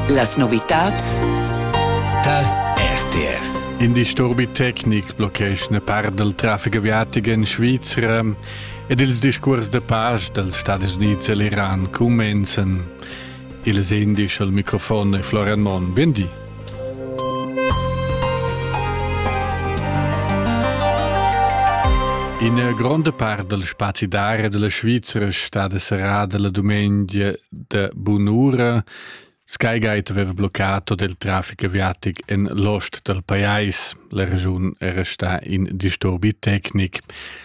Las novitads tar RTR. In disturbi tecnic blocheschna part dal traffic aviatic en Svizra ed ils discurs da pace dals Stadis Unids e l'Iran cumenzan. Ils indici al microfon è Florian Monn. Bien di. Ina gronda part dal spazi d'aria della Svizra è stata serrada la dumengia de bunura. Skygate aveva bloccato del traffic aviatic en l'ost del pajais. La regiun era sta in disturbi tecnic.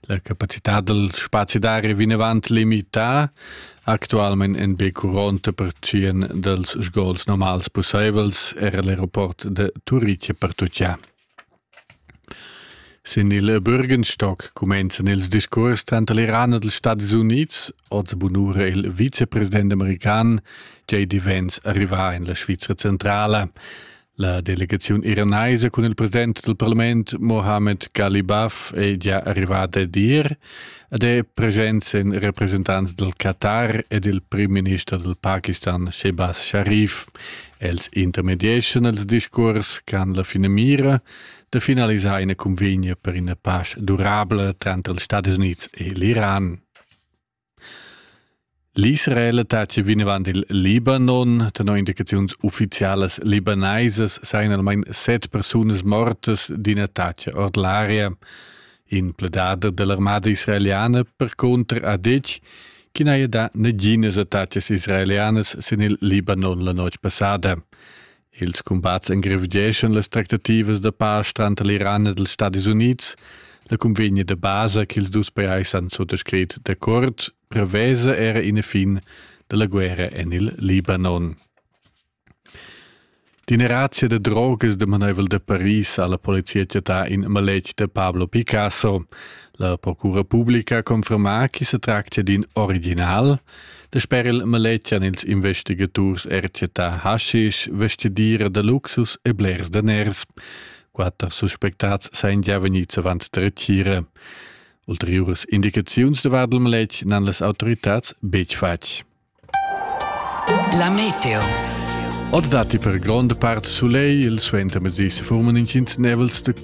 La capacità del spazi d'aria vinavant limità. Actualmein ein be curonta pertschien dals sgols normals pusseivels era l'aeroport de Turitg pertucchà. Sin il Bürgenstock cumenzan ils discurs tanter l'Iran e dels Stati Units, oz bunura il vicepresident american, che divens arrivà in la Svizra centrala. La delegaziun iranaisa cun il president del parlament Mohammed Galibaf è già arrivata a dir ed è presents in representants del Qatar ed il prim-minister del Pakistan Shehbaz Sharif. Els intermedieschan ils discurs qu'han la fine mira de finalisar ina convegna per ina pace durabla tranter els Stati Units e l'Iran. L'Israel attacca vinavant il Libanon. Tenor indicaziuns uffizialas libanaisas sajan almain set persunas mortas d'in attacc ord l'aria. In pledader da l'armada israeliana percunter ha detg ch'i n'haja dà naginas attacas israelianas sin il Libanon la notg passada. Ils cumbats engrevgeschan las tractativas da pasch tranter l'Iran ed ils Stadis Unids. La cunvegna da basa ch'ils dus pajais han suttascrit d'accord prevesa era ina fin dalla guerra en il Libanon. Dineratia da drogas damaneivel da Paris alla polizia città in maletg da Pablo Picasso. La procura pubblica conferma che se tractia d'in original. Dasper il maletgian ils investigaturs ercetà haschisch, vestidira da luxus e blers daners. Quatter suspectats sain già vegnids avant dretgira. Ulteriuras indicaziuns davart il maletg n'han las autoritats betg fatg. La meteo. Or datti per gronda part sulegl, il suenter medis forman intgins nevels da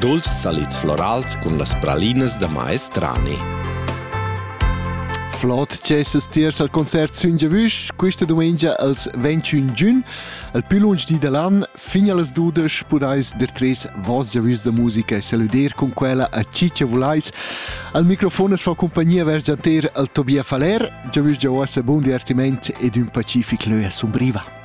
Dolcs salids florals cun las pralinas da maestrani. Flot cessas tiers al concert sün Giavüsch, questa domenica als 21 giugn, al più lunsch di dall'an, fin allas 12 podais der tres vos Giavüsch da musica e saluder con quella a Ciccia Vulais. Al microfon es fa compagnia vers Gianter al Tobia Faller, Giavüsch giauassa bun divertiment ed un pacific leu a Sumbriva.